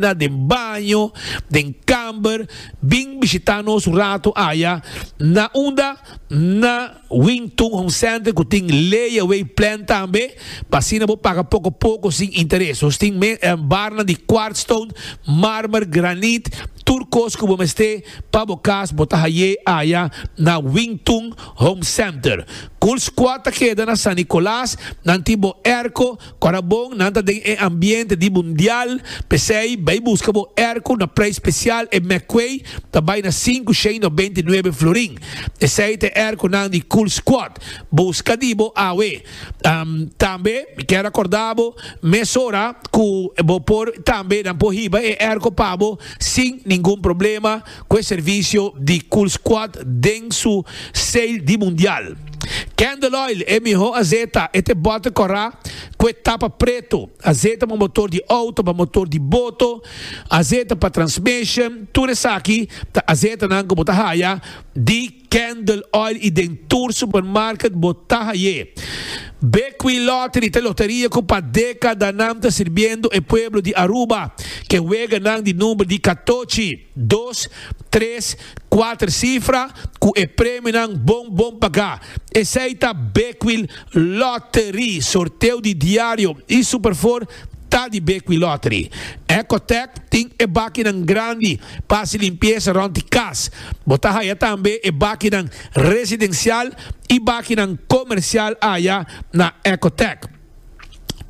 na den baño, den kamber, bin bishitá nos un ratu aya. Na unda? Na Wing Tun Home Center ku tin lay-away plan tambe, pa asina bo paga poko poko sin interes. Nos tin barnan di quartz stone, marmer, granit, tur kos ku bo mester pa bo kas bo ta hay'é aya na Wing Tun Home Center. Cool Squad ta keda na San Nicolas, nan tin bo airco, Ora bon nan ta den e ambiente di mundial, p'esei bai buska bo erko na prei spesial e McQuay ta bai na sinku shei no beinti nuebe florin. Esei ta e erkonan di Cool Squad. Buska di bo awe. Tambe mi kier a korda bo mesora ku bo por tambe nan por hiba e erko pa bo sin ningun problema. cu e servicio di Cool Squad den su sale di Mundial. Candle Oil, e miho azeta, e ta e bote cora cu e tapa preto, azeta pa motor di auto, pa motor di boto, azeta pa transmission, tur esaki ta azetanan cu bo ta haya di. Candle Oil y den tur supermarket bo ta haye. Bequi Lottery ta loteria cu pa decadanan ta sirbiendo e pueblo di Aruba ke weganan di number di catochi, dos, tres, cuater cifra cu e premionan bon bon paga. Esey ta Bequi Lottery, sorteo di diario y Superfor Ta di Bequi Lottery. Ecotec tin e bakinan grandi pa hasi limpiesa rond di kas. Bo ta haya tambe e bakinan residencial y bakinan comercial aya na Ecotec.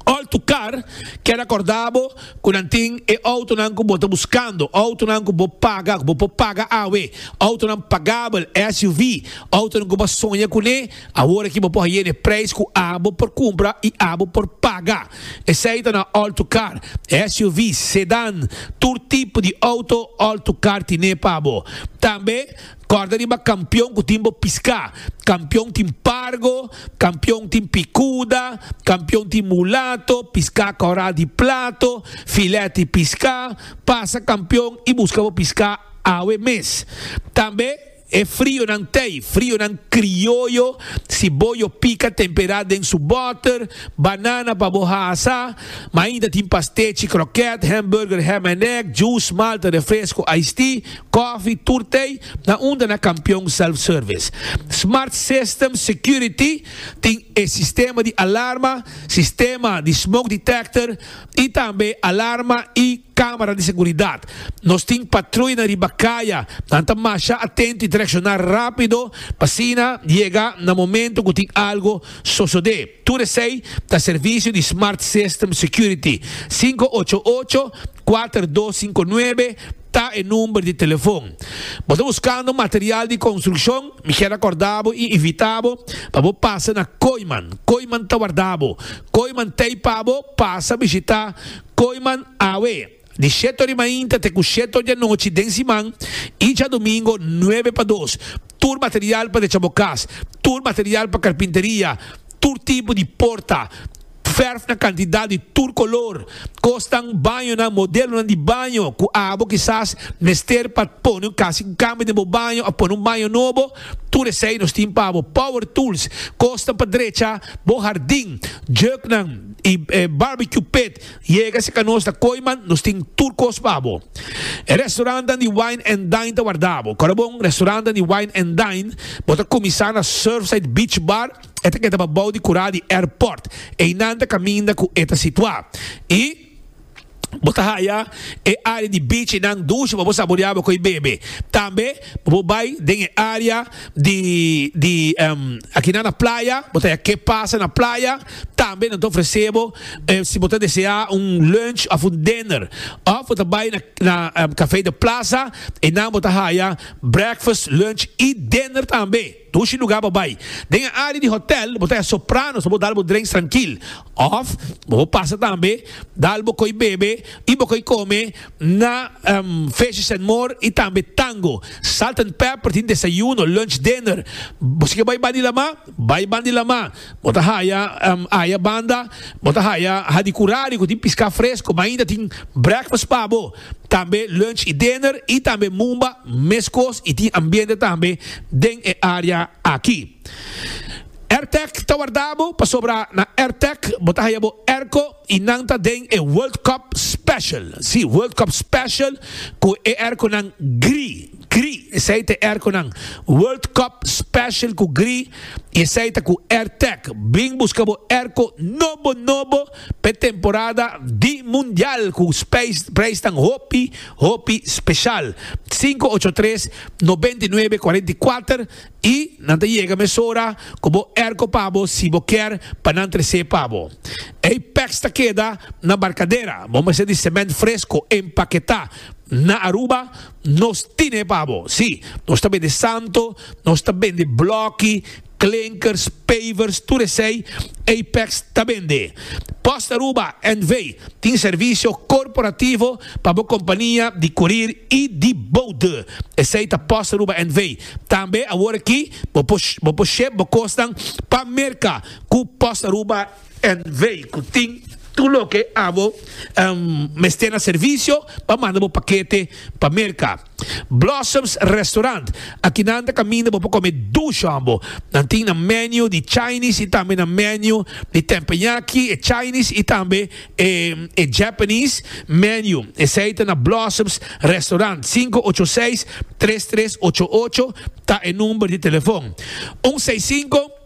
All to car keda corda bo cu nan tin e autonan cu bo ta buscando, autonan cu bo paga, cu bo por paga awe, autonan pagabel, SUV, autonan cu bo a soña cune. Awor aki bo por haye n'e prijs cu abo por cumpra y abo por paga. Esey ta na all-to-car, SUV's, sedan, tur tipo di auto all-to-car tine pa bo. Tambe corda riba campeon cu tin bo pisca. Campeon tin pargo, campeon tin picuda, campeon tin mulato, pisca coral di plato, filet di pisca. Pasa campeon y busca bo pisca awe mes. Tambe. E frionan tei, frionan krioyo, si bo yo pika tempera den su boter, banana pa bo hasa, ma ainda tin pastechi, kroket, hamburger, ham and egg, juice, malta, refresco, ice tea, kofi, tur tei, na unda na Kampion Self Service. Smart System Security tin e sistema di alarma, sistema di smoke detector y tambe alarma y. Camera di seguridad. Nos tin patruya na riba caya. Nan ta masha atento y ta reacciona rapido pa asina yega na momento cu tin algo sosode. Tur esey ta servicio di Smart System Security. Sinku ocho ocho, kuater dos sinku nuebe ta e number di telefon. Bo ta buscando material di construccion? Mi kier acorda bo y invita bo pa bo pasa na Kooiman. Kooiman ta warda bo. Kooiman ta ey pa bo pasa bishita. Koiman awe, di sheto di mainta te ku sheto di anochi den siman i djadumingu nuebe pa dos. Tur material pa decha bo kas, tur material pa karpinteria, tur tipo di porta, fèrf na kantidat di tur kolor, kosnan, bañonan, modelonan di baño ku abo kisas mester pa pone kasi un kambio den bo baño òf pone un baño nobo. Tur esei nos tin pa bo, power tools, kosnan pa drecha bo hardin, juknan i barbecue pit. Yega si ka nos na Koiman, nos tin tur kos pa bo. E restaurantnan di wine and dine ta warda bo. Korabon, restaurantnan di wine and dine, bo ta kuminsá na Surfside Beach Bar, e ta keda pa bou di kurá di airport. Einan ta kaminda ku e ta situá. I. Bo ta haya e área di bichinan dushi pa bo saboreaba ku e bebe. Tambe pa bo bai den e área di di akinan na playa bo ta haya ke pasa na playa. Tambe nan ta ofresé bo si bo ta deseá un lunch òf un dinner. Òf bo ta bai na na Café de Plaza, einan bo ta haya breakfast, lunch i dinner tambe. Dushi lugar bo bai. Den e área di hotèl bo ta hasi sopranos pa bo dal bo drenks trankil. Òf bo por pasa tambe dal bo koi bebe i bo koi kome na Feestje Senmor i tambe Tango. Salt and Pepper tin desayuno, lunch, dinner. Bo si ke bai Bandi Lamá, bai Bandi Lamá. Bo ta haya aya banda, bo ta haya hadi kurari ku tin piská fresko. Mainta tin breakfast pa bo. tambe lunch y dinner y tambe mumba meskos y tin ambiente tambe den e area aki. Airtec ta warda bo pasobra na Airtec bo ta haya bo airco y nan ta den e World Cup Special, si World Cup Special cu e airconan gri, gri esey ta e airconan World Cup Special cu gri y esey ta cu Airtec. Bring busca bo airco nobo nobo. P'e temporada di Mundial ku preisnan hopi hopi speshal. Sinku ocho tres nobenta i nuebe kuarenta i kuater i nan ta yega mesora ku bo erko pa bo si bo kier pa nan tres'é pa bo. Ei pèks ta keda na barkadera, bo mester di sement fresko empaketá. Na Aruba nos tin'é pa bo. Sí, nos ta bende santo, nos ta bende blòki. Klinkers, pavers, tur esei Apex ta bende. Post Aruba NV. tin servisio korporativo pa bo kompania di kurir i di boude. Esei ta Post Aruba NV. Tambe awor aki bo por bo por ship bo kosnan pa Merka ku Post Aruba NV. Ku tin tur loke abo mester na servisio pa manda bo pakete pa Merka. Blossoms Restaurant, Aki nan ta kaminda bo pa kome dush hombo. Nan tin nan menu di Chinese y tambe nan menu di tempeñaki, e Chinese y tambe e Japanese menu. Esey ta na Blossoms Restaurant. Sinku ocho seis tres tres ocho ocho ta e number di telefon. Un seis sinku.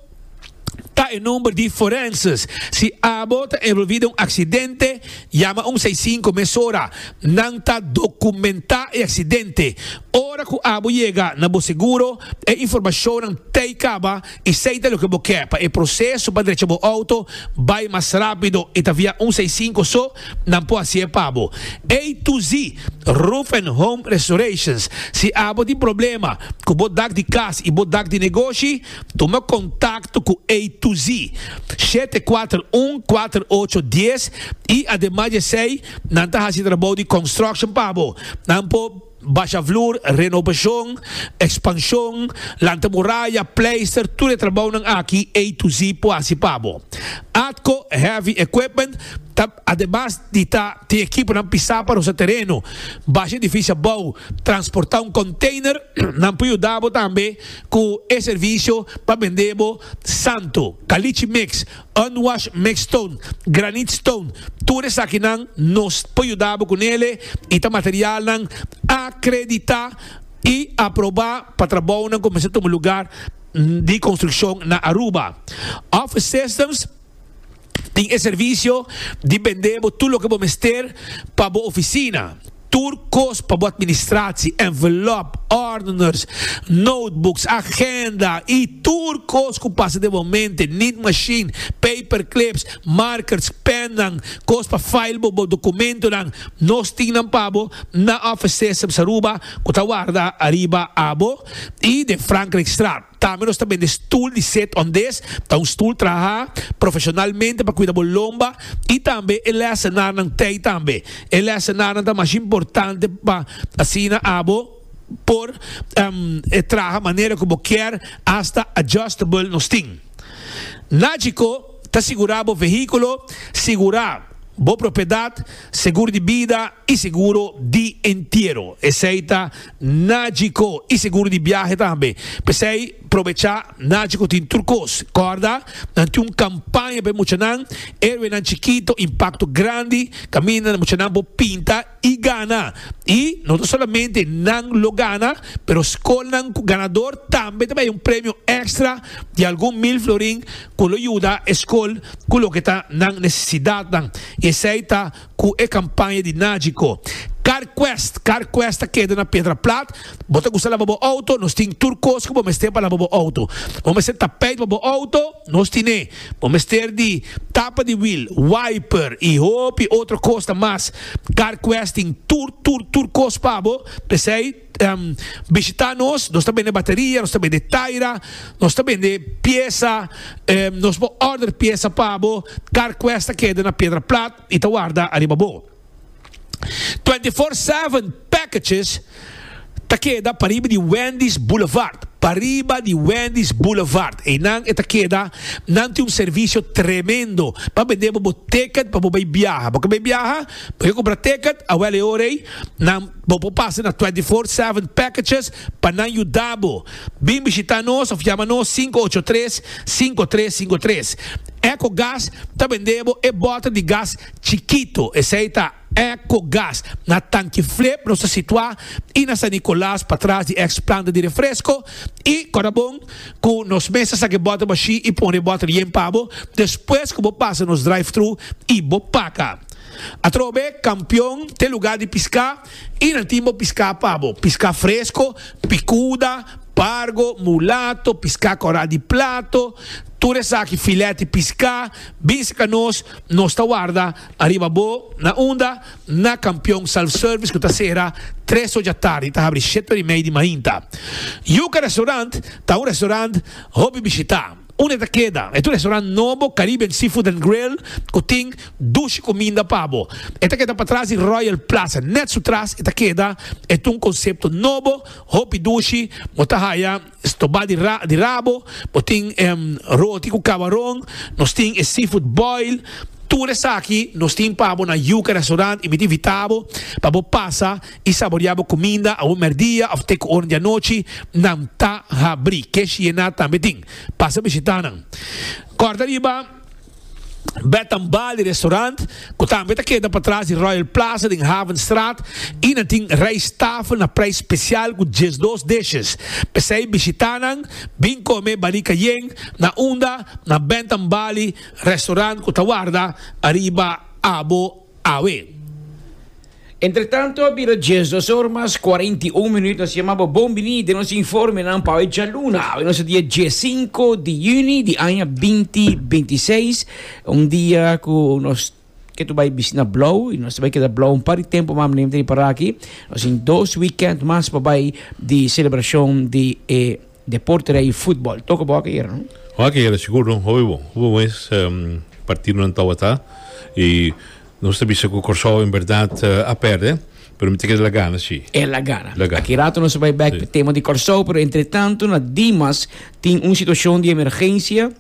ta e number di forenses. Si abo ta envolvi den un aksidente, yama un seisinko mesora. Nan ta dokumentá e aksidente. Ora ku abo yega na bo seguro, e informashonnan t'ei kaba i sei ta loke bo ke pa e proseso pa drecha bo outo bai mas rápido i ta via un seisinko so nan por hasié pa bo. A to Z Roof and Home Restorations Si abo tin problema ku bo dak di kas i bo dak di negoshi, Tuma kontakto ku A to Z shete kuater un kuater ocho dies i ademas di esei nan ta hasi trabou di construction pa bo. Nan por basha vloer, renobashon, ekspanshon, lanta muraya, pleister, tur e trabounan aki A to Z por hasi pa bo. Atco Heavy Equipment ta ademas di ta tin ekiponan pisá pa rosa tereno, basha edifisio abou, transportá un konteiner, nan por yuda bo tambe. Cu e servicio pa bende bo santo, caliche mix, unwashed mixed stone, granite stone, tur esakinan nos por yuda bo cu nele y ta materialnan acredita y aproba pa trabounan cu mester tuma lugar di construccion na Aruba. Office Systems. Tin e servicio di bende bo tur loke bo mester pa bo oficina. Tur cos pa bo administratie, envelop, ordeners, notebooks, agenda y tur cos cu pasa den bo mente, niet machine, paperclips, markers, pennan, cos pa file bo bo documentonan, nos tin nan pa bo na Office Systems Aruba cu ta warda ariba abo y den Frankrijkstraat. Tambe nos ta bende stul di set on des, ta un stul traha profesionalmente pa kuida bo lomba i tambe e lèsenarnan tei tambe. E lèsenarnan ta masha importante pa asina abo por traha manera ku bo kier asta adjustable nos tin. Nagico ta sigurá bo vehíkulo, sigurá bo propiedat, seguro di bida i seguro di entiero. Esei ta Najico y seguro di biahe tambe. P'esey probecha Najico tin tur cos. Corda, nan tin un campaña p'e muchanan, Héroenan Chikito, Impacto Grandi, caminda muchanan por pinta y gana. Y no ta solamente nan lo gana, pero scolnan cu ganador tambe ta bay un premio extra di algun mil florin cu lo yuda e scol cu loke ta nan necesidadnan. Y esey ta Cu e campaña di Nagico. Carquest, Carquest ta keda na Pedra Plat. Bo ta gusta laba bo auto? Nos tin tur cos cu bo mester pa laba bo auto. Bo mester tapijt pa bo auto? Nos tin'e. Bo mester di tapa di wiel, wiper y hopi otro cosnan mas. Carquest tin tur, tur, tur cos pa bo. P'esey. bishita nos, nos ta bende bateria, nos ta bende taira, nos ta bende piesa, nos por order piesa pa bo, car quest ta keda na piedra plat y ta warda ariba bo. Twenty four seven packages ta keda pariba di Wendy's Boulevard, pariba di Wendy's Boulevard eynan e ta keda, nan tin un servicio tremendo pa bende bo bo ticket pa bo bay biaha, bo quier bay biaha bo quier compra ticket awel e ora ey nan. Bo por pasa na Twenty Four Seven Packages pa nan yuda bo. Bin bishita nos of yama nos sinku ocho tres, sinku tres sinku tres. Echo Gas ta bende bo e bota di gas chikito, esei ta Echo Gas. Na Tanki Flip nos ta situa i na San Nicolas patras di ex planta di refresco i Corabon cu nos mes ta saca e bota bashi i pone e bota yen pa bo despues cu bo pasa nos drive-thru i bo paga. Atrobe kampion te lugá di piská i nan tin bo piská pa bo, piská fresko, pikuda, pargo, mulato, piská kòrá di plato, tur esaki filèt di piská, bin sika nos, nos ta warda ariba bo, na unda? Na kampion self service ku ta sera tres ocha tardi i ta habri shete ora i mei di mainta. Yuka Restaurant ta un restaurant hopi bishitá. Un e ta keda e tur restaurant nobo Caribbean Seafood and Grill ku tin dushi kuminda pa bo. E ta keda patras di Royal Plaza. Nèt su tras e ta keda e ta un konsepto nobo, hopi dushi, bo ta haya stobá di ra di rabo, bo tin e roti ku kabaron, nos tin e seafood boil, tur esaki nos tin pa bo na Yuca Restaurant y mi ta invitá bo pa bo pasa. i saboreá bo kuminda awor mèrdia òf te ku oren di anochi, nan ta habrí. Ke Shiena tambe tin. Pasa bishitá nan. Kòrda riba Bed and Bali Restaurant, ku tambe ta keda patras di Royal Plaza den Havenstraat, i nan tin rijsttafel na preis spesial ku diesdos dishes. P'esei bishitá nan, bin kome Bali Cayenne na unda na Bed and Bali Restaurant ku ta warda ariba abo. awe. Entretanto a bira dies dos or mas cuarenta y un minuut nos yama bo bon bini den nos informenan pa awe djaluna awe nos a dia die cinco di juni di aña binti binti seis un dia cu nos ke tur bay bisti na Blauw y nos ta bay keda Blauw un par di tempo mas manera mi ta riparaki nos tin dos weekend mas pa bay di celebracion di e Deporte ta i futbol. Toca bo aki era, no? Oh, aki era sigur, no? Hopi bon. Hopi bon es partidonan tawata. I nos ta bisa cu Corsou en berdad a perde, pero mi ta keda el a gana, si. El a gana. La gana. Aki rato nos ta bai bek pa e tema di Corsou, pero entretanto na Dimas tin un situacion di emergencia.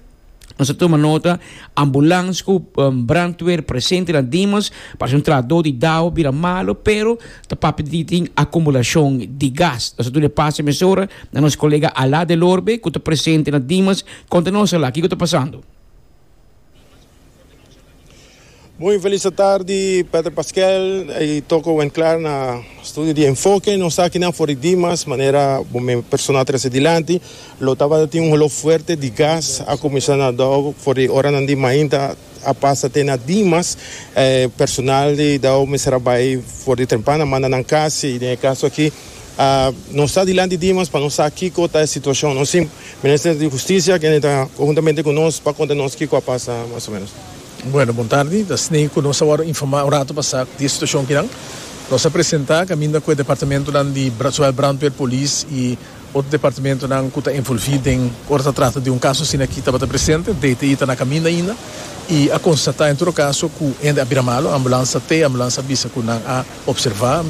Nos a tuma nota, ambulans ku brandweer presente na Dimas, parse un trahadó di Dao bira malu, pero ta papia di tin akumulashon di gas. Nos a duna e pasa emisora na nos kolega Alá Delorbe ku ta presente na Dimas, konta nos Alá kiko ta pasando. Muy feliz atardi Pater Pascual y toco buen clar na studio di enfoke nos ta akinan for di Dimas manera bo me persona a trece dilanti lo tabata tin un holo fuerte di gas a cuminsa na Dao for di oranan di mainta a pasa te na Dimas eh personal di Dao mester a bay for di Trempana manda nan casi y den e caso aki nos ta dilanti dimas pa nos sa kiko ta e situashon. Nos tin Minister di Hustisia kende ta konhuntamente ku nos pa konta nos kiko a pasa mas o menos. Bueno, bon tardi. Ta snehi ku nos a wòrdu informá un ratu pasá di e situashon akinan. Nos a presentá kaminda ku e departamentunan di zowel brandweer, polis i otro departamentunan ku ta envolví den ora ta trata di un kaso asina aki tabata presente. DTI ta na kaminda ainda i a konstatá en todo kaso ku hende a bira malu. Ambulansa te, ambulansa a bisa ku nan a. Observá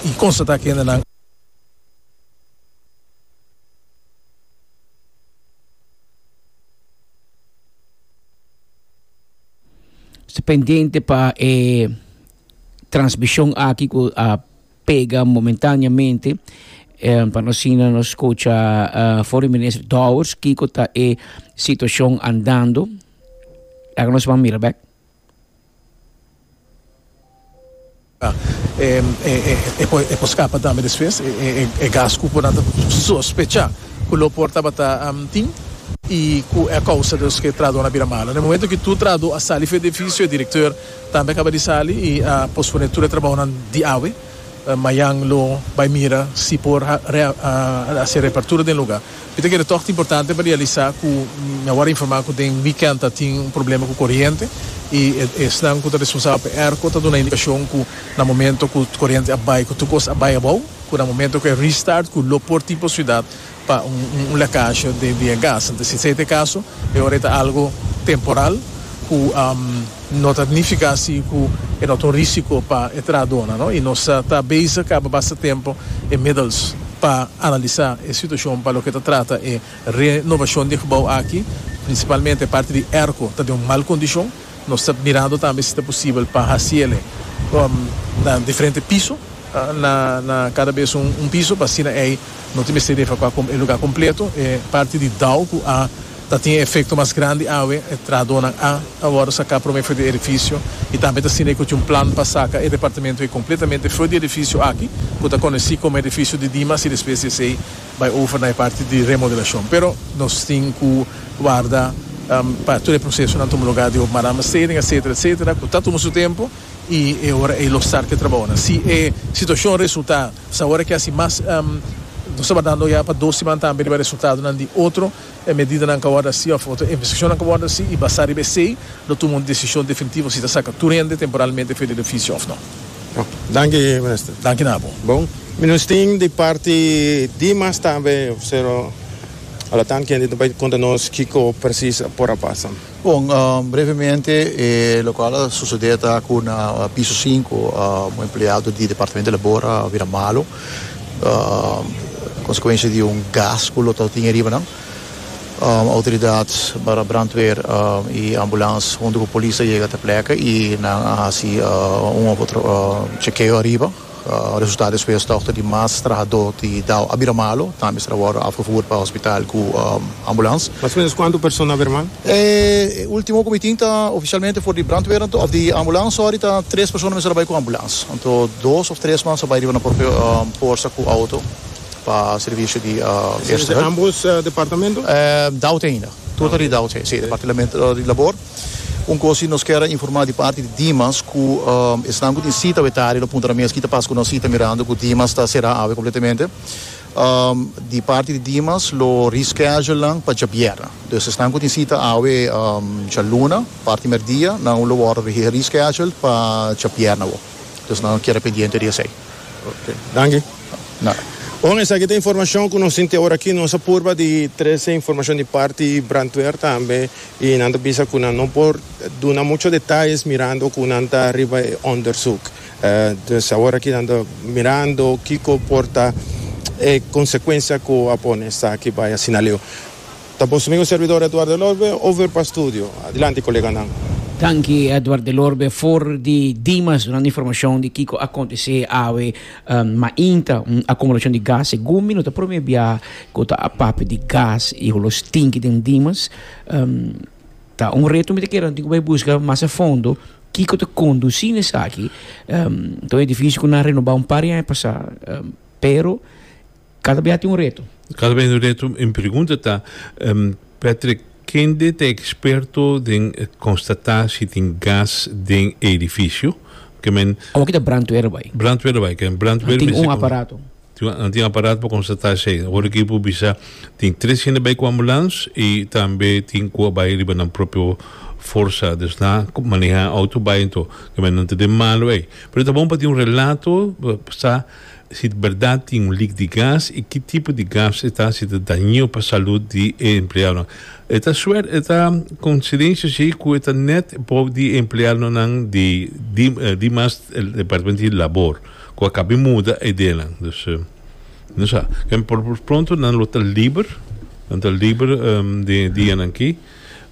i konstatá kendenan. Sta pendiente pa e transmishon aki ku a pega momentáneamente pa nos asina nos skucha Foreign Minister Dowers kiko ta e situashon andando. Laga nos ban mira bek. E por scapa tambe despues e gas cu nan ta sospecha cu lo por tabata tin y cu e a causa dus cu e traador a bira malo. Na e momento cu tur traador a sali for e edificio e director tambe a caba di sali y a pospone tur e trabahonan di awe. Mayan lo bay mira si por haci e reapertura den lugar. Mi ta kere tòg importante pa realisá ku mi awor a informá ku den wikènt a tin un problema ku koriente i esnan ku ta responsabel pa e ERCO ta duna indikashon ku na momento ku koriente a bai ku tur kos a bai abou ku na momento ku e restart ku lo por tin por siudat pa un lekasje di e gas. Entonces si esei ta e kaso e ora ei ta algu temporal ku. No ta nifica si cu e no ta un risico pa e trahadornan, no, y nos ta bezig caba basta tempo e middels pa analisa e situacion pa loke ta trata e renovacion di e gebouw aki, principalmente e parti di airco ta den un mal condicion, nos ta mirando tambe si ta posibel pa haciele na diferente piso, na na cada bes un piso, pa asina ey no tin mester efecua e lugar completo, e parti di dao cu a. Ta tin e efekto mas grandi awe. E trahadónan a ta wòrdu saká promé for di edifisio i tambe ta siña ku tin un plan pa saka e departamentu ei kompletamente for di edifisio aki ku ta konosí komo edifisio di Dimas i despues di esei bai over na e parti di remodelashon. Pero nos tin ku warda pa tur e prosesonan tuma lugá di hopi marama steding etsetera etsetera ku ta tuma su tempu i e ora ei lo start ku e trabaonan. Si e situashon resultá sa ora ke hasi mas nos tabata dando ya pa dos siman tambe riba resultadonan di otro. E medidanan ka wòrdu hasi òf otro investigashonnan ka wòrdu hasi i basá riba esei lo tuma un desishon definitivo si ta saka tur hende temporalmente fuera di ofisio òf no. Bon. Danki, Minister. Danki na bo. Bon. Minis tin di parti dimas tambe, pero alotan kende ta bai konta nos kiko presis por a pasa. Bon, brevemente e lokual a sosodé ta ku na piso sinku un empleado di Departamento di Labor a bira malu konsekuensia di un gas ku lo ta tin ariba nan. Outoridat para brandweer i ambulans huntu ku polis ta yega te plek i nan a hasi un òf otro chekeo ariba. Resultado di speurstokte di mas trahadó di Dao a bira malo, tambe estra wòrdu afevoer pa hospital ku ambulans. Mas o menos kuantu persona a bira mal? E ultimo ku mi tin ta ofisialmente for di brandweer anto of di ambulans sòri ta tres persona mester a bai ku ambulans. Anto dos of tres mas a bai riba na propio porsa ku outo pa servisio di eerste hulp. Esei ta ambos departamento? Dao te ainda. Tur ta di Dao, si. Departilamento di labor. Un cosi nos kier a informa di parti di Dimas cu esnan cu tin cita wetaria lo puntra mes kita pas cu nos cita mirando cu Dimas ta cera awe completamente. Di parti di Dimas lo reschedule nan pa djabiera. Dus esnan cu tin cita awe djaluna parti merdia nan lo worde reschedule pa djabiera awo. Dus nan kier a pendiente di esey. Ok. Danki. Nada. Bon, esaki ta informacion cu nos tin te ora aki. Nos a purba di trece informacion di parti Brantweer tambe. Y nan ta bisa cu nan no por duna mucho detalles mirando cu nan ta riba e onderzoek. Dus aworaki nan ta mirando kico por ta e consecuencia cu a pone esaki bay asina Leo. Ta boso amigo y servidor Edward Delorbe over pa studio. Adilanti coleganan. Danki Edward Delorbe for di Dimas dunando informacion di kico a contece awe mainta un acumulacion di gas. Segun mi no ta prome biaha cu ta a papia di gas y holos tinki den Dimas. Um, ta un reto mi te kera tin bay busca mas a fondo kiko te conduci ne saki um, ta un edificio ku na renoba un par ya pasa um, pero cada vez tin un reto cada vez un reto mi pregunta ta um, Patrick kende te experto den constata si tin gas den edificio ke men awaki ta brandweer bay brandweer bay ke brandweer tin un aparato Nan tin aparat pa konstatá esei. Ora ki bo bisa tin tres hende bai ku ambulans i tambe tin ku a bai riba nan propio forsa. Dus nan a manehá outo bai anto tambe nan ta den malu ei. Pero ta bon pa tin un relato pa sa si ta bèrdat tin un lik di gas i ki tipo di gas e ta, si ta daño pa salut di e empleadonan. E ta suert, e ta konsidensia si ku e ta nèt por di e empleadonan di di di mas departamento di labor. Cu a cabe muda e ideanan. Dus, no sa. Ken por por pronto nan lo ta liber. Nan ta liber den e dianan aki.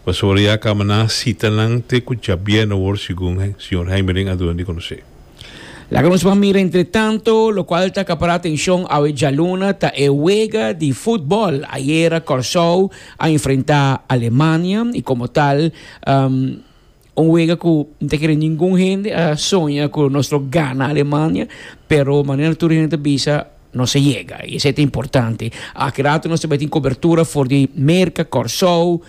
Pasobra ya caba nan a cita nan te cu djabier na wor segun Señor Heimerling a duna di conoce. Laga nos ban mira entretanto locual ta acapara atencion awe djaluna ta e wega di futbol. Ayera Corsou a enfrenta Alemania y como tal. Un wega ku N ta kere ningun hende a soña ku nos lo gana Alemania, pero manera tur hende ta bisa, nos a yega. I esei ta importante. Aki rato nos ta bai tin kobertura for di Merka, Kòrsou,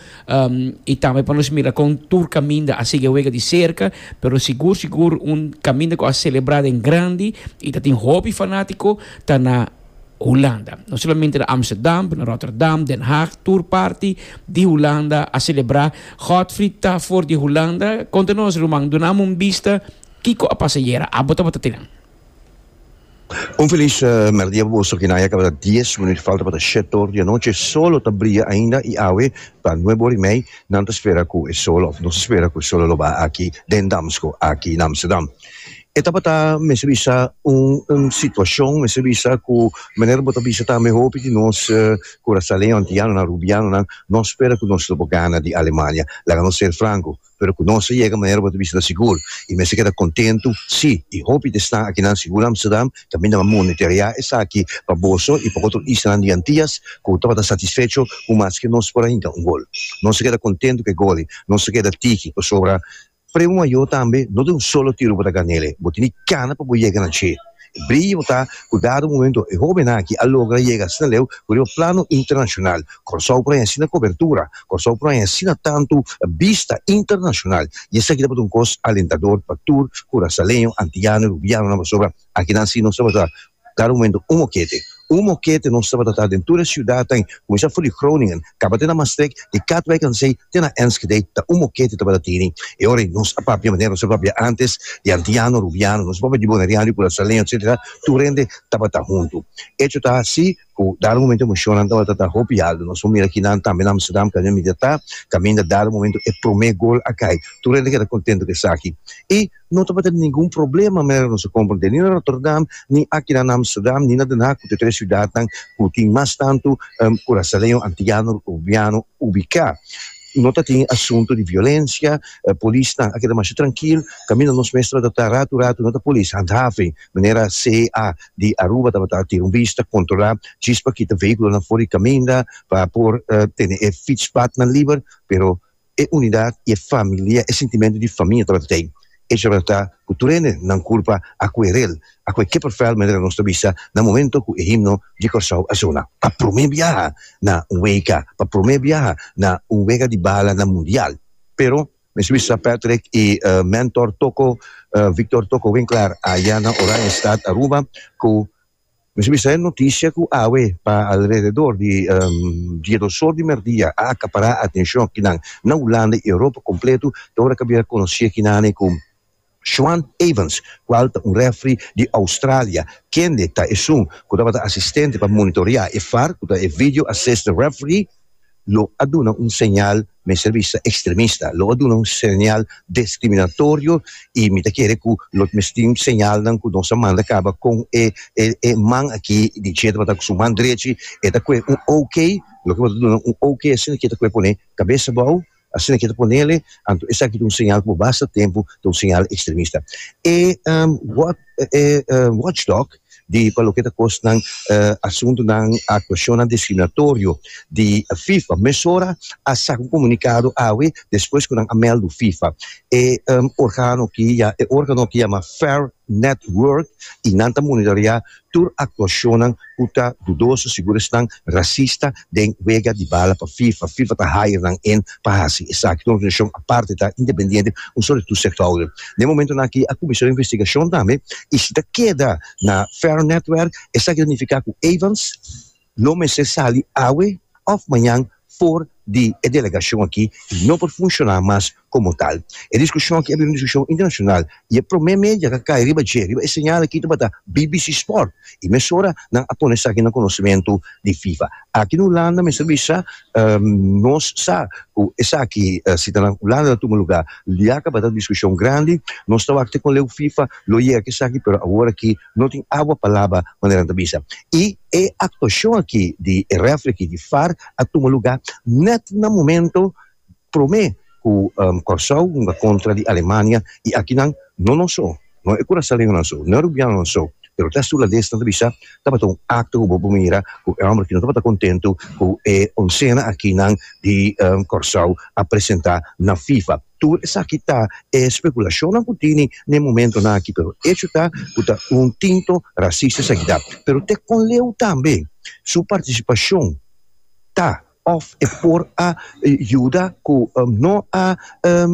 i tambe pa nos mira kon tur kaminda a sigui e wega di serka, pero sigur sigur un kaminda ku a selebrá den grandi i ta tin hopi fanátiko ta na Hulanda. No solamente na Amsterdam, pero na Rotterdam, Den Haag, tur parti di Hulanda a celebra. Godfried ta for di Hulanda. Conta nos, ruman, duna amo un bista kico a pasa ayera. Abo tabata tinen. Un feliz merdia pa boso kinan ya cabata dies minuut falta pa ta shete ora di anoche. Solo ta bria ainda y awe ta nuebe ora y mei nan ta spera cu e solo of nos ta spera cu e solo lo baha aki den Damsko aki na Amsterdam. E tabata mester bisa un un situacion mester bisa cu manera bo ta bisa tambe hopi di nos curacaleño antianonan rubianonan no spera cu nos lo por gana di Alemania laga nos ser franco pero cu nos a yega manera bo ta bisa ta sigur y mester keda contentu si y hopi ta esnan akinan sigur na Amsterdam tambe nan a monitorea esaki pa boso y pa otro islanan di Antias cu tabata satisfecho cu maske nos por a hinca un gol nos a keda contentu cu e golnan nos a keda tiki pasobra Premo mayor tambe no ta un solo tiro bo ta gana ele, bo tin di cana pa bo yega na dje. E briye bo ta cu dado momento e hobennan aki a logra yega asina leu cu riba plano internacional. Corsow por haya asina cobertura, Corsow por haya asina tanto bista internacional y esaki tabata un cos alentador pa tur curasaleño, antillano y rubianonan pasobra aki nan si nos tabata Kada momento un mokete. Un mokete nos tabata ta den tur e siudatnan, kuminsá for di Groningen, kaba te na Maastricht, di Katwijk aan zee te na Enschede, ta un mokete tabata tini. E ora ei nos a papia manera nos a papia antes, di antiano, rubiano, nos a papia di boneriano, di Curaçaleño, etcetera, tur hende tabata huntu. Echo ta así, Ku dado momento e mushonnan tabata ta hopi alto. Nos por mira kinan tambe na Amsterdam Canyon Media ta. Kaminda dado momento e promé gol a kai. Tur hende keda kontentu ku esaki. I no tabata ningun problema manera nos a komprondé ni na Rotterdam, ni akinan na Amsterdam, ni na Den Haag ku ta e tres siudatnan ku tin mas tantu kurasaleño, antiano, boliviano ubiká. No ta tin asuntu di violensia. Polisnan a keda masha trankil. Kaminda nos mes tabata ta ratu ratu no ta polis handhaving. Manera CEA di Aruba tabata tin un bista controla djis pa kita vehiculonan for di caminda pa por tene e fietspatnan liber, pero e unidad y e familia, e sentimento di famia tabata t'ey. Ey tabata ta cu tur hende nan culpa a Querel, a cu e kippervel manera nos ta bisa na momento cu e himno di Corsou a sona pa prome biaha na un wega, pa prome biaha na un wega di bala na mundial. Pero Mi su Sir Patrick y Mentor Toko, Victor Toko Winkler aya na Oranjestad Aruba cu mi su bisa e noticia cu awe pa alrededor di diedos or di merdia a acapara atencion kinan na Hulanda y Europa completo ta ora cabia conoci e kinane cu Schwant Evans, kual ta un refri di Oustralia, kende ta esun ku tabata asistente pa monitorea e var, ku ta e video assistant referee, lo a duna un señal mester bisa ekstremista. Lo a duna un señal diskriminatorio i mi ta kere ku lo ta mester tin señalnan ku nos ta manda kaba kon e e man aki di Jay tabata ku su man drechi, e ta kue un OK, loke bo ta duna un OK asina ke ta kue pone kabesa bou. Asina ke ta ponele, anto esaki ta un señal ku bo basta tempu ta un señal ekstremista. E Watchdog di pa loke ta kosnan asuntunan, aktuashonnan diskriminatorio di fifa mesora a saka un komunikado awe despues ku nan a mèldu fifa. E organo ki yama Fair Network i nan ta monitoriá Tur aktuashonnan ku ta dudoso sigur esnan rasista den wega di bala pa fifa. Fifa ta hire nan en pa hasi esaki. Tur organisashon aparte ta independiente un solo di toezichthouder. Den momentunan aki a kuminsá un investigashon tambe i si ta keda na Fair Netwerk esaki ta nifiká ku Evans, No mester sali awe òf mañan for di e delegashon akí i no por funshoná mas komo tal. E diskushon akí a bira un diskushon internashonal i e promé media k'a kai riba dje, riba e señal akí tabata bbc Sport i mesora nan a pone esaki na konosementu di Fifa. Aki na Hulanda mester bisa nos sa ku esaki si ta na Hulanda ta tuma lugá ya tabata un diskushon grandi. Nos ta wak te kon leu Fifa lo yega k'esaki pero awor akí. No tin awa pa laba, manera nan ta bisa. I e actuashon aki di e refri aki di far a tuma lugá nèt na momento promé ku Kòrsou hunga kontra di Alemania. I aki nan, no nos so, no e kurasaleñonan so, no e rubianonan so, pero ta e Sulaldes nan ta bisa tabata un akto ku bo por mira ku e hòmber aki no tabata kontentu ku e onsenan aki nan di Kòrsou a presentá na FIFA. Tur esaki ta e spekulashonnan ku tini na e momentonan aki, pero echo ta ku ta un tinto rasista esaki ta. Pero te kon Leu tambe su partisipashon ta òf e por a yuda ku no a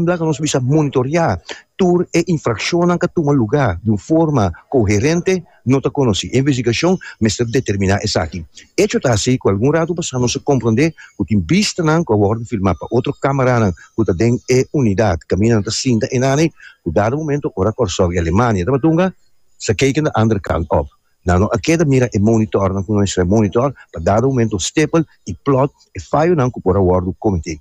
laga nos bisa monitoriá tur e infrakshonnan ka tuma lugá di un forma koherente, no ta konosí. E investigashon mester determiná esaki. Echo ta hasi ku algun ratu pasá nos a komprondé ku tin bistanan ku a wòrdu filmá pa otro kámaranan ku ta den e unidat kaminda nan ta sinta e nana ei ku dado momento ora Kòrsou i Alemania tabatunga sa keken de ander kant òf nan no a keda mira e monitòrnan ku nuestra monitòr pa dado momento stipel i plòt e fayonan ku por a wòrdu kometé.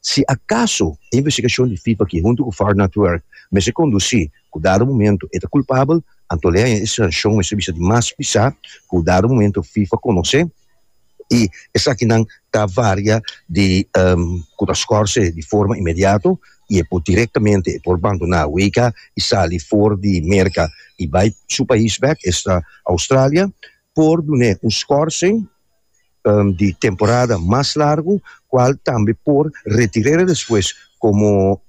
Si akaso e investigashon di Fifa aki huntu ku Far Not Work mester kondusí Ku dado momento e ta kulpabel, anto lei e sanshon mester bisa di mas pisá ku dado momento fifa konosé i esakinan ta varia di ku ta skòrse di forma inmediato i e por direktamente e por bandoná wk i sali for di Merka i bai su pais bèk, esta Australia, por dun'é un skòrsing. di temporada mas largu cual tambe por retirera despues como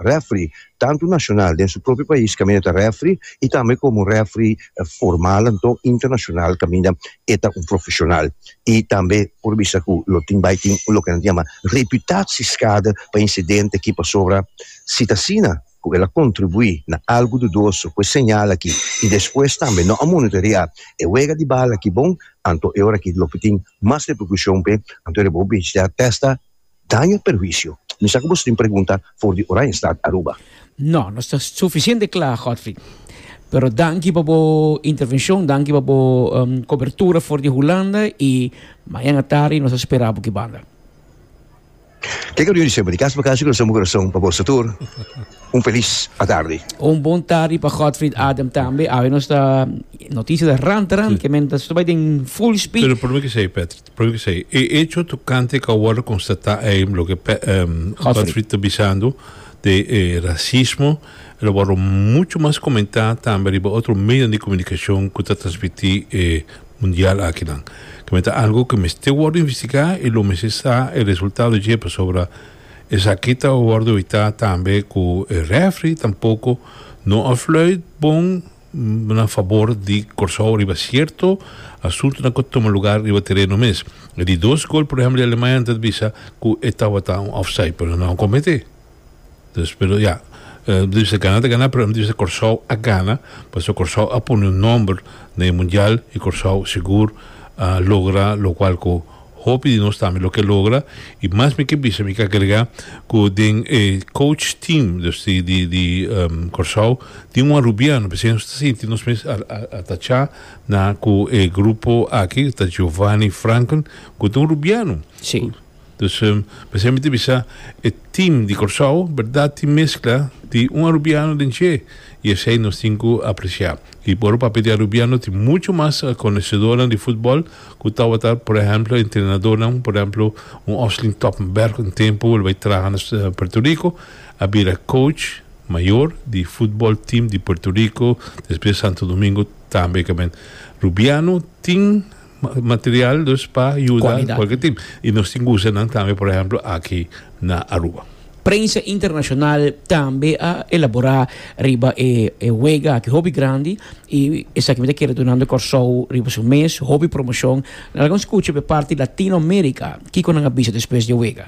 referee tanto nacional den su propio pais caminda ta referee y tambe como referee formal anto internacional caminda e ta un profesional y tambe por bisa cu lo tin bay tin loke nan ta yama reputaciescade pa incidente aki pasobra si ta asina cu el a contribui na algu dudoso cu e señal aki y despues tambe no a monitorea e wega di bala aki bon, anto e ora aki lo tin mas repercusion p'e, anto e bo b'e sta testa daño y perhuicio. Mi sa cu bo tin pregunta for di Oranjestad Aruba. No, nos ta suficiente cla, Godfrey. Pero danki pa bo intervencion, danki pa bo cobertura for di Hulanda y mañana tardi nos ta spera bo aki banda. Ke ke lo yu di semper di kas pa kas yu kurason pa kurason pa boso tur un felis atardi. Un bon tardi pa Godfried Adam tambe. Awe nos ta noticia ta ran ta ran ke men ta bai den full speed. Pero probe ke sei Patrick, probe ke sei e hecho tokante ke a wordo konstata ei loke Godfried ta bisando de e rasismo lo wordo mucho mas komentá tambe riba otro medion di komunikashon ku ta transmití e mundial akinan. Keme ta algu ku mester wòrdu investigá i lo mester sa e resultado dje pasobra esaki ta wòrdu witá tambe ku e refri tampoko no a fluit bon na fabor di Kòrsou riba sierto asuntunan ku a tuma lugar riba tereno mes. E di dos gol, por ehèmpel di Alemaña, nan ta bisa ku e tabata un òfsait pero nan a kometé. Dus pero ya nan ta bisa gana ta gana pero nan ta bisa Kòrsou a gana pasobra Kòrsou a pone un nòmber na e mundial i Kòrsou sigur a logra lokual ku hopi di nos tambe lo ke logra i mas mi ke bisa mi ke agregá ku den e kouch team dus di di di Kòrsou tin un arubiano p'esei nos ta sinti nos mes a a atachá na ku e grupo aki ta Giovani Franken ku ta un rubiano. Dus mi semper ta bisa e team di Kòrsou bèrdat tin meskla di un arubiano den dje i esei nos tin ku apresiá. I por papia di arubiano tin muchu mas konesedónan di futbòl ku tawata por ehèmpel entrenadónan por ehèmpel un Osling Toppenberg un tempu lo bai traha na Puerto Rico a bira coach mayor di futbòl team di Puerto Rico despues Santo Domingo tambe. Rubiano tin. material dus pa yuda kualke tip i nos tin ku usa nan tambe por ehempel aki na Aruba. Prensa internashonal tambe a elaborá riba e wega aki hopi grandi i esaki mi ta kere dunando Kòrsou riba su mes hopi promoshon. Laga mi skucha p'e parti Latinoamerika kiko nan a bisa despues di e wega.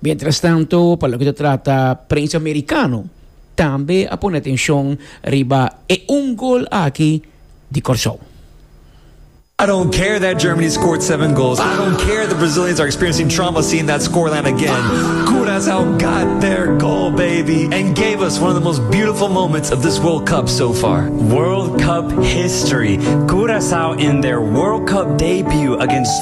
Mientrastanto, pa loke ta trata prensa merikano, tambe a pone atenshon riba e un gol aki di Kòrsou. I don't care that Germany scored seven goals, I don't care the Brazilians are experiencing trauma seeing that scoreline again, Curaçao got their goal baby and gave us one of the most beautiful moments of this World Cup so far. World Cup history, Curaçao in their World Cup debut against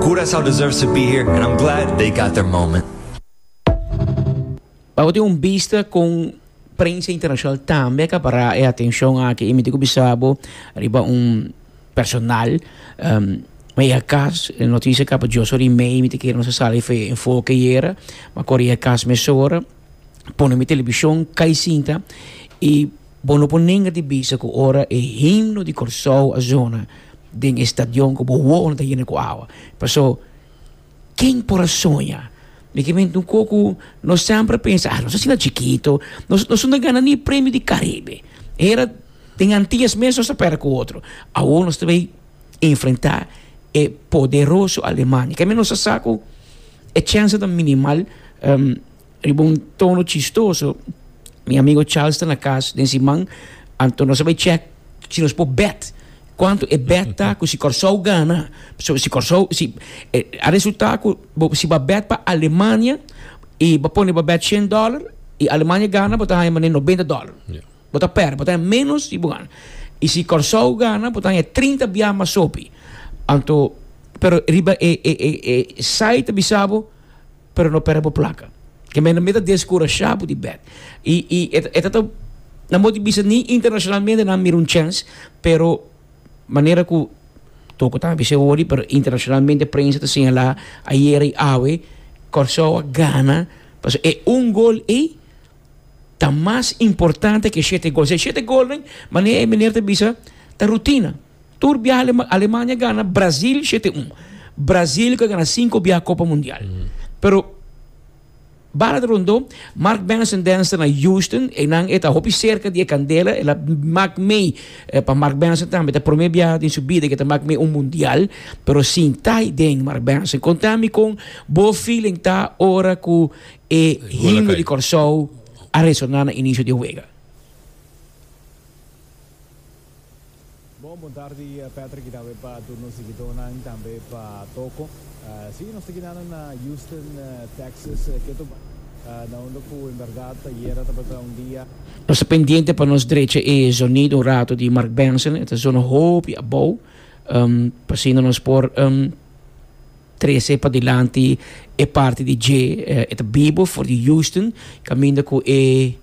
Curaçao deserves to be here and I'm glad they got their moment. Bo tin un bista con prensa internacional tambe a capara e atencion aki. Y mi tin cu bisa bo riba un personal. Um, ma e a cas, e noticia capa dioso rimei, mi tin kere nos a sali fe enfoke yera, ma kor e a cas mesora, pone mi television cai sinta y. Bo no por nenga di bisa ku ora e himno di Kòrsou a zona den e stadion ku bo wowonan ta yena ku awa. Pasó, ken por a soña? Mi ke menti un kos ku nos sèmpre a pensa, nos asina chikito, nos nos no ta gana ni e Premio di Karibe. E hera den Antias mes nos a pèrdè ku otro. Awor nos ta bai enfrentá e poderoso Alemania. Kende nos a sa ku e chense ta minimal. Riba un tono chistoso, mi amigo Charles ta na cas den si man, anto nos a bai check si nos por bet cuanto e bet ta cu si Corsou gana, so si Corsou si a resulta cu bo si bo a bet pa Alemania y bo pone bo bet shen dollar y Alemania gana bo ta haya manera noventa dollar, bo ta perde bo ta haya menos di bo gana y si Corsou gana bo ta haya trinta biaha mas hopi anto pero riba e e e site ta bisa bo. pero no perde bo plaka. Ke mene mi ta deskurashá bo di bèk. I i e e ta ta nan bo ti bisa ni internashonalmente nan mira un chèns, pero manera ku toko tambe bis'é wòrdu pero internashonalmente prensa ta señalá ayera i awe Kòrsou a gana pasobra e un gol ei ta mas importante ke shete gol. Si e shete golnan manera e meneer ta bisa ta rutina. Tur bia Alemania gana Brasil shete un. Brasil ka gana sinku bia Kopa Mundial. Pero bala ta rondó, Mark Benson dens ta na Houston, einan e ta hopi serka di e kandela, el a mak mee, pa Mark Benson tambe ta promé bia den su bida ke ta mak mee un Mundial, pero sin tai den, Mark Benson. Konta mi kon bo feeling ta ora ku e himno di Kòrsou a resoná na inisio di e wega. Bon bon tardi Patrick y tambe pa tur nos siguidónan tambe pa Toco. Sí, nos ta kinando na Houston, Texas, ke tu bay na unda cu en berdad ayera tabata un dia. Nos ta pendiente pa nos drecha e zonido un rato di Mark Benson, e ta zona hopi abou, pasinda nos por trece padilanti e parti di dje, e ta bibo for di Houston, caminda cu e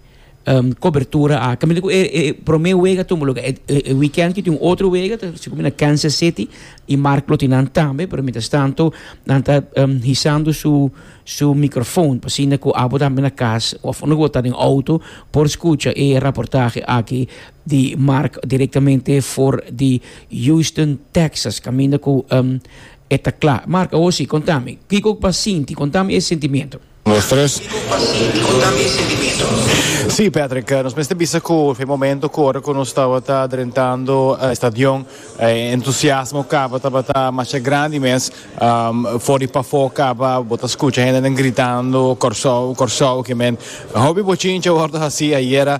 Um cobertura aki mente cu e e prome wega tumba lo e e weekend ki tin un otro wega ta si cumina Kansas City y Mark lo tin nan tambe pero mientras tanto nan ta um hisando su su microfoon pa asina cu abo tambe na cas of unda cu bo ta den auto por scucha e raportahe aki di Mark directamente for di Houston Texas caminda cu um e ta cla. Mark awo si conta mi kico bo a sinti conta mi e sentimiento. Sí, Patrick, nos mester bisa cu e momento cu ora cu nos tabata drentando e stadion, e entusiasmo caba tabata masha grandi mes. For di pafó caba bo ta scucha hende gritando Corsou, Corsou aki men. Hopi bochinchi a wordo haci ayera,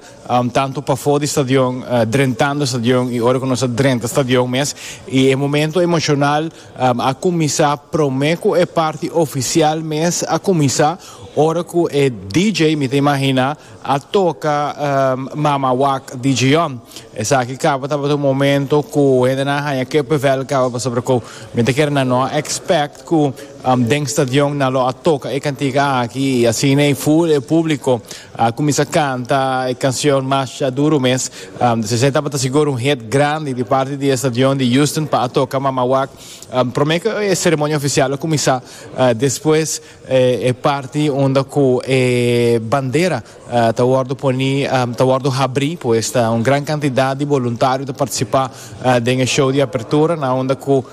tanto pafó di stadion, drentando e stadion y ora cu nos a drenta e stadion mes. Y e momento emocional. A kuminsá promé ku e parti ofisial mes a kuminsá ora ku e DJ, mi ta imaginá, a toka Mama Wak di Djian. Esaki kaba tabata un momento ku hendenan a haña kippevel kaba pasobra ku mi ta kere nan no a expect ku den stadion nan lo a toka e kantika aki i asina i full e públiko. A cuminsa canta e cancion Masha Duro mes. Esey tabata sigur un hit grandi di parti di e stadion di Houston pa a toca Mama Wak prome cu e ceremonia oficial a cuminsa despues e parti unda cu e bandera ta wordo poni ta wordo habri pues ta un gran cantidad di boluntario ta participa den e show di apertura na unda cu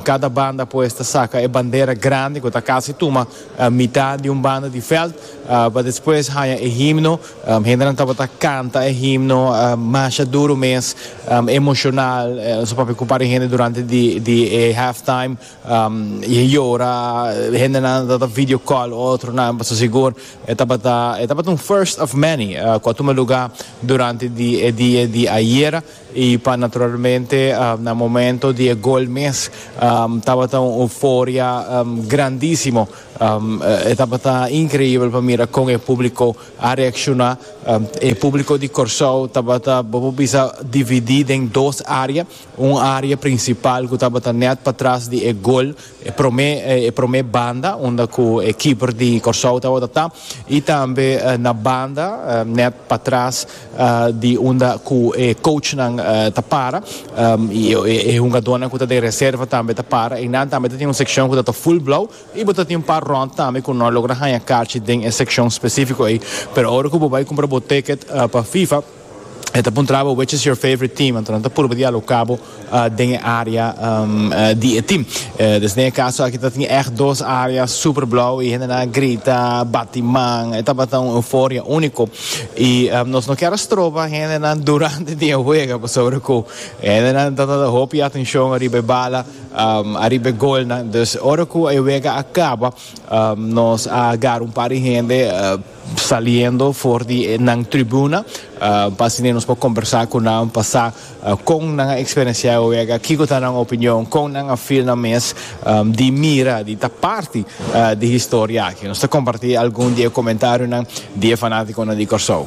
Kada banda pues ta saka e bandera grandi ku ta kasi tuma mitá di un banda di veld pa despues haña e himno. Hendenan tabata kanta e himno masha duru mes, emoshonal. Nos a papia ku un par di hende durante di e halftime i a yora. Hendenan a trata video call otronan pasobra sigur e tabata un first of many ku a tuma lugá durante di e dia di ayera. Y pa naturalmente na momento di e gol mes tabata un euforia grandisimo. E tabata increibel pa mira con e publico a reacciona. E publico di Corsou tabata bo por bisa dividi den dos area. Un area principal cu tabata net patras di e gol. E prome e prome banda unda cu e keeper di Corsou tabata ta y tambe na banda net patras di unda cu e coachnan ta para y e hungadornan cu ta den reserva tambe ta para. Eynan tambe ta tin un seccion cu ta ta full blauw y bo ta tin un par rond tambe cu no a logra haña carchi den e seccion specifico ey. Pero ora cu bo bay cumpra bo ticket pa FIFA. E ta puntraba which is your favorite team, anto nan ta purba di alo cabo den e area di e team. Des den e caso aki ta tin echt dos area super blauw y hendenan a grita, bati man, e tabata un euforia unico. Y nos no kier a stroba hendenan durante di e wega pasobra cu hendenan ta tata hopi atencion ariba e bala, ariba e golnan. Dus ora cu e wega a caba nos a gar un par di hende. Saliendo for di nan tribuna pa asina nos por combersa cu nan pa sa con nan a experiencia e wega, kico ta nan opinion, con nan a feel nan mes di mira, di ta parti di historia aki. Nos ta comparti algun di e comentariunan di e fanaticonan di Corsou.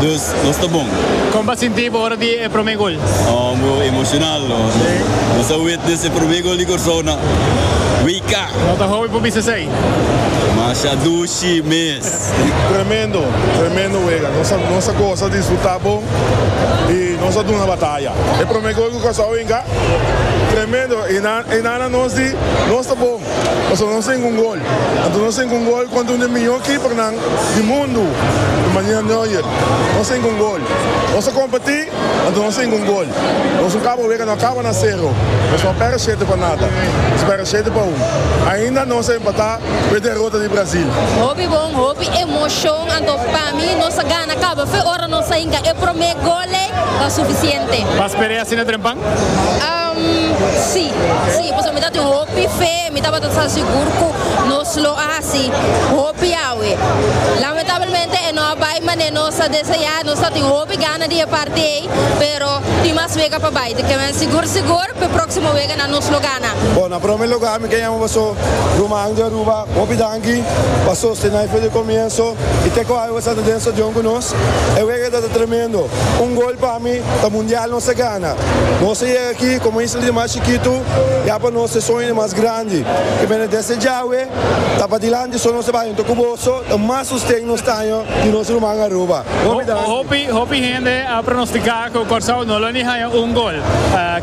Dus nos ta bon. Kon bo a sinti bo ora di e promé gol? Oh, bo emoshonal no. Nos a witnes e promé gol di Kòrsou na WK. No ta hopi pa bisa esei. Masha dushi mes. Tremendo, tremendo wega. Nos a nos a gosa, disfrutá bon i nos a duna bataya. E promé gol ku Kòrsou a winga, tremendo. E nan e nannan nos di nos ta bon pasobra nos tin un gol. Anto nos tin ku un gol kontra un di e mihó kipernan di mundu, di Manuel Neuer. Nos tin ku un gol. Nos a kompetí, anto nos tin ku un gol. Nos un kaba wega, no a kaba na sero. Nos no a pèrdè shete pa nada. Nos pèrdè shete pa un. Ainda nos a empatá ku e derota di Brazil. Hopi bon, hopi emoshon. Anto pa mi nos a gana kaba fe ora nos a hinka e promé gol ei ta sufisiente. Pas perdé asina drempan? Am, sí. Sí, pasobra mi ta tin hopi fe. Mi tabata sa sigur cu nos lo a haci hopi awe. Lamentablemente e no a bay mane nos a desea, nos ta tin hopi gana di e parti ey, pero tin mas wega pa bay. Te kimen sigur sigur p'e proximo wega nan nos lo gana. Bon, na prome lugar mi ke yama boso ruman di Aruba hopi danki pa sosten nan fe di comienso y te coge boso a ta den stadion cu nos. E wega tabata tremendo. Un gol pa mi ta mundial nos a gana. Nos a yega aki como isla di Mar. chikitu ya pa nos e soñonan mas grandi ke bende desde djawe ta padilanti so nos ta bay hunto ku boso ta mas susten nos taño di nos ruman Aruba hopi danki. Hopi hopi hende a pronostica cu Corsou no lo ni haya un gol.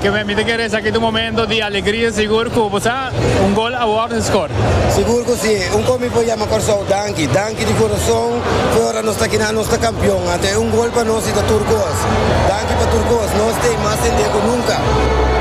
Ke mi ta kere esaki ta un momento di alegria sigur cu bo sa un gol a worde score. Sigur cu si. Un con mi por yama Corsou danki. Danki di corazon fue ora nos ta kina nos ta campeon. Anto e un gol pa nos y ta tur cos. Danki pa tur cos. Nos ta mas hende cu nunca.